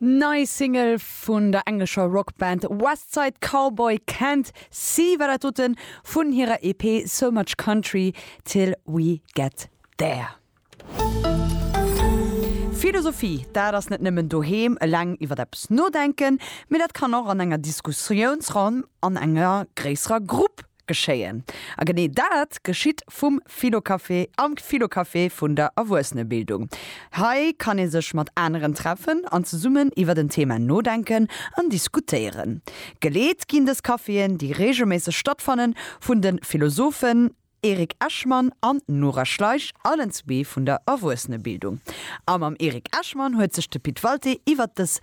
D'nei Single vun der englescher Rockband West Side Cowboy Can't See war dat doten vun hirer EP So Much Country Till We Get There. Philosophie, dat ass net nëmmen doheem eleng iwwer eppes nodenken, mee dat kann och an enger Diskussiounsronn an enger gréisserer Grupp geschéien. A genee dat geschitt vum Philocafé am Philocafé vun der Erwuessenebildung. Hei kann ee sech mat aneren treffen an zesummen iwwert en Thema nodenken an diskutéieren. Geleet ginn dës Caféen, déi reegelméisseg stattfannen, vun de Philosophen Eric Eshman an Nora Schleich, allen zwee vun der Erwuessenebildung. A mam Eric Eshman huet sech de Pit Walté iwwert dës.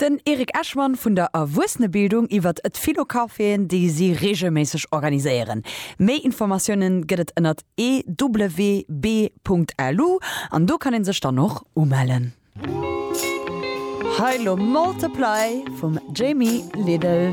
Den Eric Eschmann vun der Erwuessenebildung iwwert d'Philo-Caféen, déi si reegelméisseg organiséieren. Méi Informatiounen gëtt et ënnert ewb.lu an do kann ee sech dann och umellen. Hei lo Multiply vum Jamie Lidl.